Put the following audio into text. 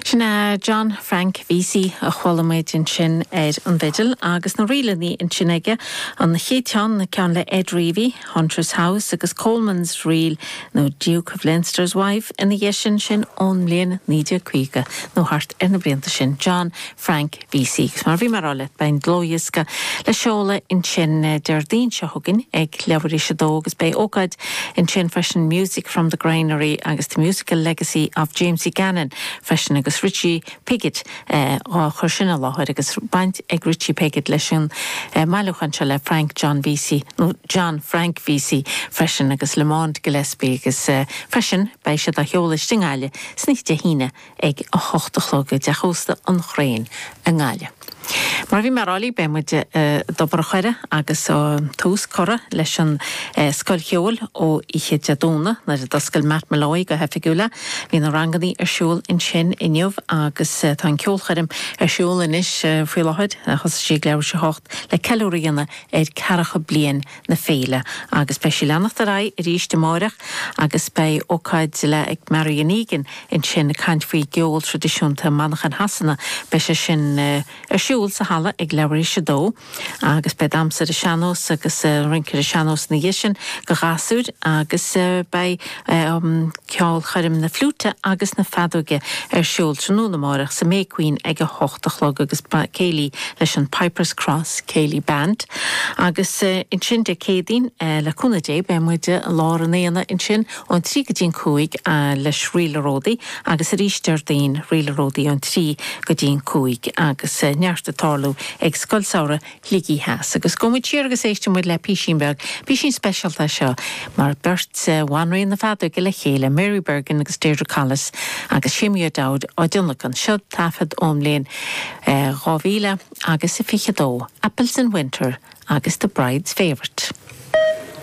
Sin é John Frank Vesey a chuala muid ansin ar an bhfidil agus na ríleanna ansin aige, an chéad cheann, ceann le Ed Reavy, Hunter's House agus Coleman's Reel, nó Duke of Leinster's Wife ina dhiaidh sin, sin ón mbliain 1950 nó thart ar na blianta sin, John Frank Vesey, mar bhí mé a' rá leat, beidh an dlúthdhiosca le seoladh ansin Déardaoin seo chugainn ag leathuair tar éis 2 agus beidh ócáid ansin freisin Music from the Granary agus the Musical Legacy of Jamesie Gannon freisin agus Richie Piggott á chur sin i láthair agus baint ag Richie Piggott leis an mbailiúchán seo le Frank John Vesey nó John Frank Vesey freisin agus Lamond Gillespie agus freisin beidh siad á sheoladh istigh i nGaillimh ansin Dé hAoine ag a hocht a chlog i dteach ósta an Chrainn i nGaillimh. Mar a bhí mé ag rá libh, beidh muid i dTobar an Choire agus tá tús curtha leis an Scoil Cheoil ó oíche Dé Domhnaigh nuair a d'oscail Matt Molloy go hoifigiúil é. Bhí na rangannaí ar siúl ansin inniu agus tá an ceolchoirm ar siúl anois faoi láthair. Thosaigh sí ag leathuair tar éis a hocht le ceiliúradh a dhéanamh ar cheathracha bliain na féile agus beidh sí leanacht ar aghaidh arís amáireach agus beidh ócáid le Marian Egan ansin ag caint faoi gceol traidisiúnta Manchain Shasana. Beidh sé sin ar siúl sa halla ag leathuair tar éis a dó agus beidh damhsa ar an sean-nós agus rince ar an sean-nós ina dhiaidh sin do ghasúir agus beidh ceolchoirm na fliúite agus na feadóige ar siúl tráthnóna amárach sa May Queen ag a hocht a chlog agus beidh céilí leis an Pipers Cross Céilí Band agus ansin Dé Céadaoin le cúnamh Dé beidh muid i lár an aonaigh ansin ón trí go dtí an cúig leis Ríl a Ródaí agus arís Déardaoin Ríl a Ródaí ón trí go dtí an cúig agus neart ag tarlú ag Scoil Samhraidh Shligigh Theas agus gabhfaidh muid siar agus éistfidh muid le písín beag, písín speisialta é seo, mar beirt de bhanríon na feadóige le chéile, Mary Bergin agus Deirdre Collis agus Seamie O'Dowd á dtionlacan. Seo taifead ón mbliain 2022, Apples in Winter agus The Bride's Favourite.